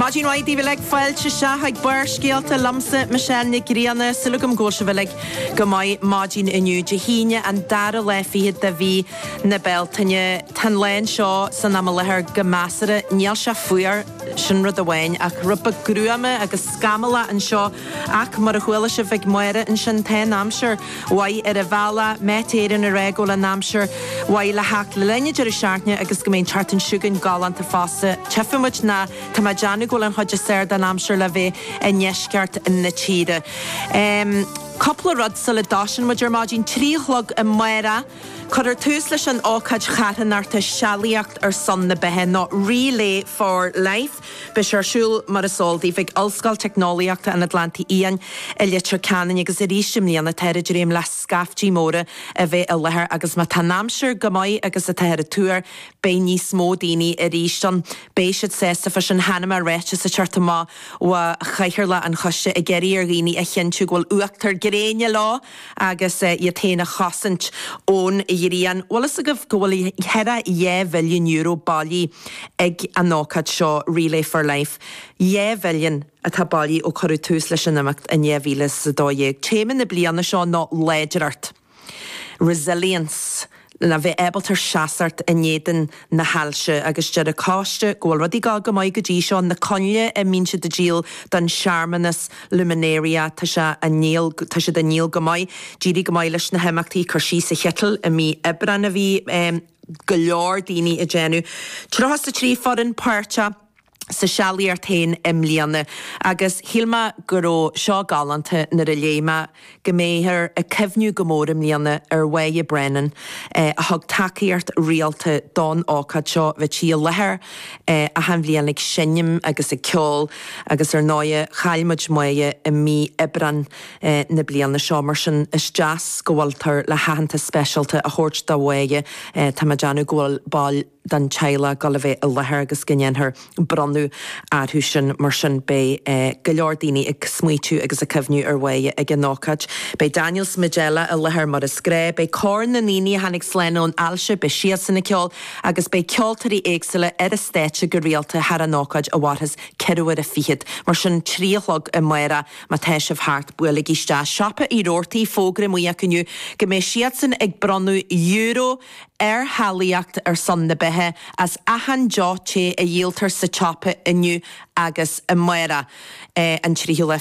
Maidin mhaith daoibh uilig, fáilte isteach chuig Barrscéalta liomsa, Michelle Nic Grianna. Súil agam go bhfuil sibh uilig go maith maidin inniu, Dé hAoine, an dara lá fichead de mhí na Bealtaine. Tá an lá anseo san am i láthair go measartha, níl sé fuar, sin rud amháin, ach rud beag gruama agus scamallach anseo, ach mar a chuala sibh ag Máire ansin, tá an aimsir. mhaith ar an bhealach, Met Éireann ag rá go bhfuil an aimsir mhaith le theacht le linn an deireadh seachtaine agus go mbeidh an tseachtain seo chugainn galánta fosta. Tchífidh muid nó tá mé ag déanamh go bhfuil an chuid is fearr den aimsir le bheith i ndeisceart na tíre. Cúpla rud sula dtoisíonn muid ar maidin, trí a chlog amárach, cuirfear tús leis an ócáid charthanachta Sealaíocht ar son na Beatha nó Relay for Life. Beidh sé ar siúl, mar is eol daoibh, ag Ollscoil Teicneolaíochta an Atlantaigh Fhiáin i Leitir Ceanainn agus arís i mbliana táthar ag dréim le scaiftí móra a bheith i láthair agus má tá an aimsir chomh maith agus atáthar ag tuar beidh níos mó daoine arís ann. Beidh siad sásta faoi sin. Chonaic mé ráiteas a chuir siad amach, bhí Cathaoirleach an Choiste ag iarraidh ar dhaoine a chinntiú go bhfuil uachtar gréine leo! agus iad féin a chosaint ón ghrian. Bhfuil fhios agaibh go bhfuil thaire dhá mhilliún euro bailithe ag an ócáid seo, Relay for Life? Dhá mhilliún atá bailithe ó cuireadh tús leis an imeacht in dhá mhíle is a dó dhéag. Téama na bliana seo ná 'Láidireacht, Resilience'. a bheith ábalta seasacht in éadan na hailse agus deir an coiste go bhfuil rudaí ag dul go maith go dtí seo, na coinnle a mbíonn siad ag díol don searmanas Luminaria tá sé á ndíol, tá siad á ndíol go maith, d'éirigh go maith leis na himeachtaí cur síos an chitil i mí Aibreáin a bhí go leor daoine ag déanamh, 33 foireann páirteach. sa tsealaíocht féin i mbliana agus shíl mé go raibh seo galánta nuair a léigh mé go mbeifear ag cuimhniú go mór i mbliana ar Mhoya Brennan a thug tacaíocht rialta don ócáid seo. Bhí sí i láthair achan bhliain ag seinm agus ag ceol agus ar ndóigh chaill muid Moya i mí Aibreáin na bliana seo mar sin is deas go bhfuiltear le haitheantas speisialta a thabhairt do Mhoya. Tá mé ag déanamh go bhfuil den teaghlach ag dul a bheith i láthair agus go ndéanfar bronnadh orthu sin. Mar sin beidh go leor daoine ag smaoitiú agus ag cuimhniú ar Mhoya ag an ócáid. Beidh Daniel is Majella i láthair mar is gnách, beidh cór na ndaoine a tháinig slán ón ailse, beidh siadsan ag ceol agus beidh ceoltóirí éagsúla ar an stáitse go rialta thar an ócáid a mhairfeas ceithre huaire fichead. Mar sin trí a chlog amárach má tá sibh thart, buailigí isteach. Siopa Uí Robhartaigh, fógra amuigh acu inniu go mbeidh siadsan ag bronnadh euro. ar Shealaíocht ar son na beatha as achan deoch te a dhíoltar sa tsiopa inniu agus amárach an 30ú le.